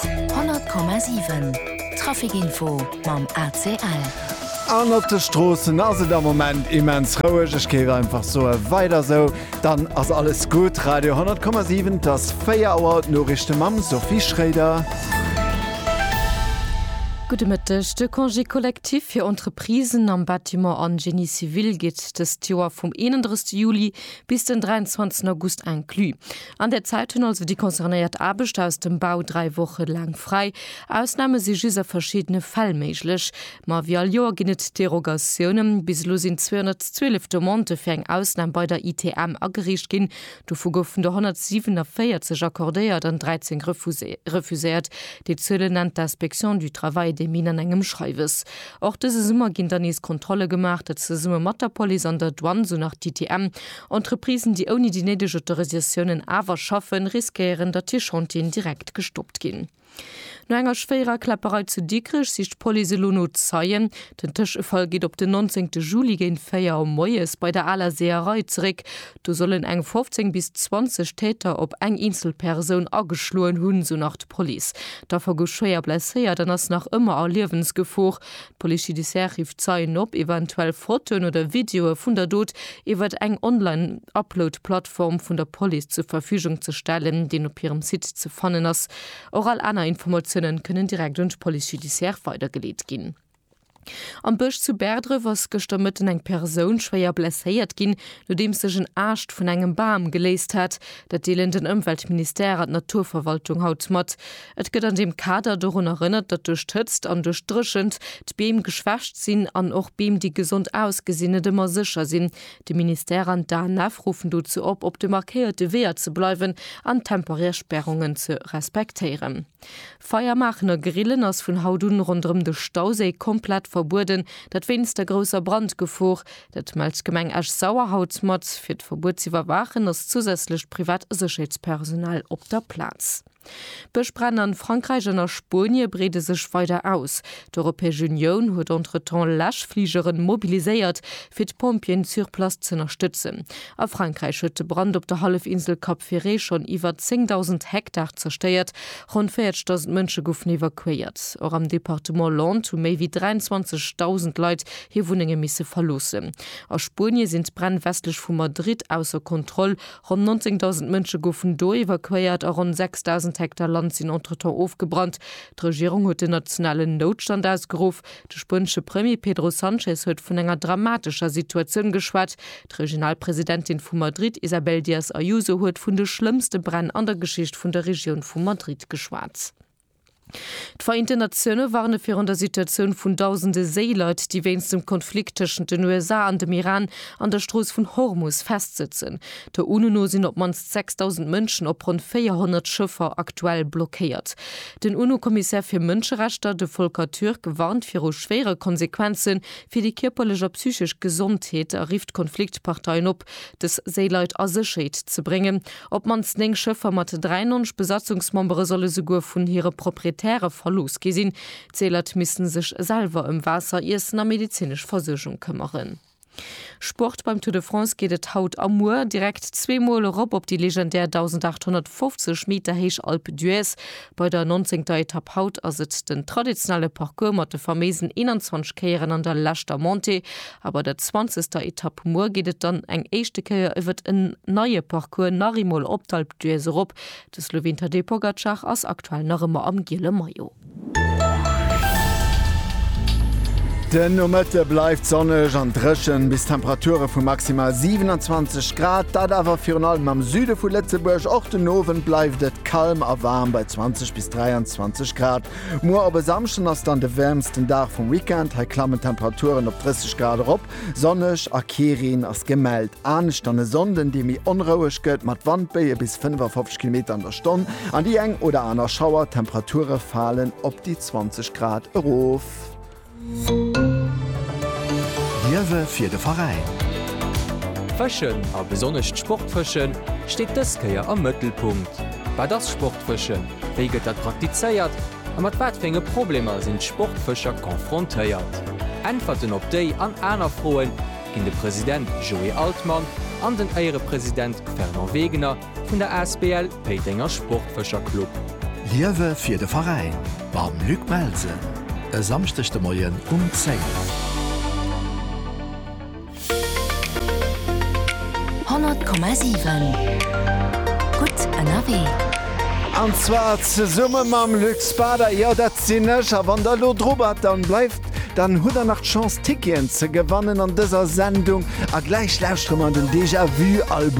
100,7 Traficinfo mam ACL. An op de Stroossen ass et am Moment immens roueg. Ech géif einfach soen, weider esou, dann ass alles gutt. Radio 10,7, et ass 4 Auer, d'Noriichte mam Sophie Schroeder. Gudde Mëtteg. De Congé collectif fir Entreprisen am Bâtiment an Génie civil geet dëst Joer vum 31 Juli bis den 23 August inclus. An där Zäit hunn also déi concernéiert Aarbechter aus dem Bau dräi Woche laang fräi. Ausname si just a verschiddene Fäll méiglech. Ma wéi all Joer ginn et Derogatiounen. Bis elo sinn 212 Demandë fir eng Ausnam bei der ITM agereecht ginn. Dovu goufen der 147 accordéiert an 13 refuséiert. Déi Zuele nennt d'Inspection du travail et des mines an engem Schreiwes. Och dëse Summer ginn dann nees Kontrolle gemaach, dat zesumme mat der Police an der Douane, sou nach d'ITM. Entreprisen, déi ouni déi néideg Autorisatiounen awer schaffen, riskéieren, datt hir Chantieren direkt gestoppt ginn. No enger schwéierer Kläpperei zu Dikrech sicht d'Police elo no Zeien. Den Tëschefall geet op den 19 Juli géint 4 Auer moies bei der Aler Seeërei zeréck. Do sollen eng 15 bis 20 Täter op eng eenzel Persoun ageschloen hunn, sou nach d'Police. D'Affer gouf schwéier blesséiert an ass nach ëmmer a Liewensgefor. D'Police judiciaire rifft Zeien op, eventuell Fotoen oder Videoe vun der Dot iwwert eng Online-Upload-Plattform vun der Police zur Verfügung ze stellen, deen op hirem Site ze fannen ass. Och all aner Informatiounen kënnen direkt un d'Police judiciaire weidergeleet ginn. Am Bësch zu Bäerdref ass gëschter Mëtten eng Persoun schwéier blesséiert ginn, nodeems sech en Aascht vun engem Bam geléist hat. Dat deelen den Ëmweltministère an d'Naturverwaltung haut mat. Et gëtt an deem Kader dorun erënnert, datt duerch d'Hëtzt an duerch d'Dréchent d'Beem geschwächt sinn an och Beem, déi gesond ausgesinn, net ëmmer sécher sinn. De Ministère an d'ANF ruffen dozou op, op de markéierte Weeër ze bleiwen an temporär Spärungen ze respektéieren. Feier maachen a Grillen ass vun haut un ronderëm de Stauséi komplett verbueden, dat wéinst der grousser Brandgefor. Dat mellt d'Gemeng Esch-Sauer haut mat. Fir d'Verbuet z'iwwerwaachen ass zousätzlecht privat Sécherheetspersonal op der Plaz. D'Bëschbränn an Frankräich an a Spuenie breede sech weider aus. D'Europäesch Unioun huet entretemps Läschfligeren mobiliséiert, fir d'Pompjeeën sur place z'ënnerstëtzen. A Frankräich huet de Brand op der Hallefinsel Cap Ferret schonn iwwer 10.000 Hektar zerstéiert, ronn 40.000 Mënsche goufen evakuéiert. Och am Departement Landes hu méi wéi 23.000 Leit hir Wunnenge misse verloossen. A Spuenie sinn d'Bränn westlech vu Madrid ausser Kontroll, Ronn 19.000 Mënsche goufen do evakuéiert a ronn 6.000 Hektar Land sinn entretemps ofgebrannt. D'Regierung huet den nationalen Noutstand ausgeruff. De spuenesche Premier Pedro Sanchez huet vun enger dramatescher Situatioun geschwat. D'Regionalpresidentin vu Madrid Isabel Díaz Ayuso huet vun de schlëmmste Bränn an der Geschicht vun der Regioun vu Madrid geschwat. D'Vereenten Natioune warne virun der Situatioun vun dausende Séileit, déi wéinst dem Konflikt tëschent den USA an dem Iran an der Strooss vun Hormus festsëtzen. Der UNO no sinn op d'mannst 6.000 Mënschen op ronn 400 Schëffer aktuell blockéiert. Den UNO-Kommissär fir Mënscherechter, de Volker Türk, warnt viru schwéiere Konsequenze fir déi kierperlech a psychesch Gesondheet a rifft d'Konfliktparteien op, Hëllef, dës Séileit a Sécherheet ze bréngen. Op d'mannst 9 Schëffer mat 93 Besatzungsmembere solle souguer vun hire Proprietäre verlooss gi sinn. D'Séileit misste sech selwer ëm Waasser, Iessen a medezinesch Versuergung këmmeren. Sport, Beim Tour de France geet et haut a muer direkt zweemol erop op déi legendär 1.850 Meter héich Alpe d'Huez. Bei der nonzéngter Etapp haut ass et den traditionelle Parcours mat de faméisen 21 Kéieren an der leschter Montée a bei der zwanzegster Etapp muer geet et dann eng éischte Kéier iwwert en neie Parcours nach eemol op d'Alpe d'Huez erop. De Sloween Tadej Pogacar ass aktuell nach ëmmer am giele Maillot. Den Nomëtte bleift sonneg an dréchen, bis Temperature vu maximal 27 Grad, dat awer virun allem am Süde vu Lëtzebuerg. Och den Owend bleift et. Kalm a waarm bei 20 bis 23 Grad. Muer op e Samschden ass dann de wäermsten Dag vum Weekend. Hei klammen d'Temperaturen op 30 Grad erop. Sonneg a kee Reen ass gemellt. Anescht dann e Sonnden, dee méi onroueg gëtt mat Wandbéie bis 55 Kilometer an der Stonn an déi eng oder aner Schauer. D'Temperature falen op déi 20 Grad erof. D'Liewe fir de Veräin. Fëschen, a besonnesch d'Sportfëschen, steet dës Kéier am Mëttelpunkt. Wat ass Sportfëschen, wéi gëtt dat praktizéiert a mat wat fir enge Problemer sinn d'Sportfëscher confrontéiert? Äntwerten op déi an aner Froe ginn de President Joé Altmann an den Éierepresident Fernand Wegener Vun der Asbl Péitenger Sportfëscher Club. Liewe fir de Veräin mam Luc Melsen e Samschdeg de Moien um 10. 100,7 Gutt ënnerwee. An zwar zesumme mam Luc Spader, jo dat sinn ech. A wann der elo dru bart, dann bleift, dann hutt der nach d'Chance Ticketen ze gewannen an dëser Sendung. A gläich lauschtere mer an den Déjà Vu Album.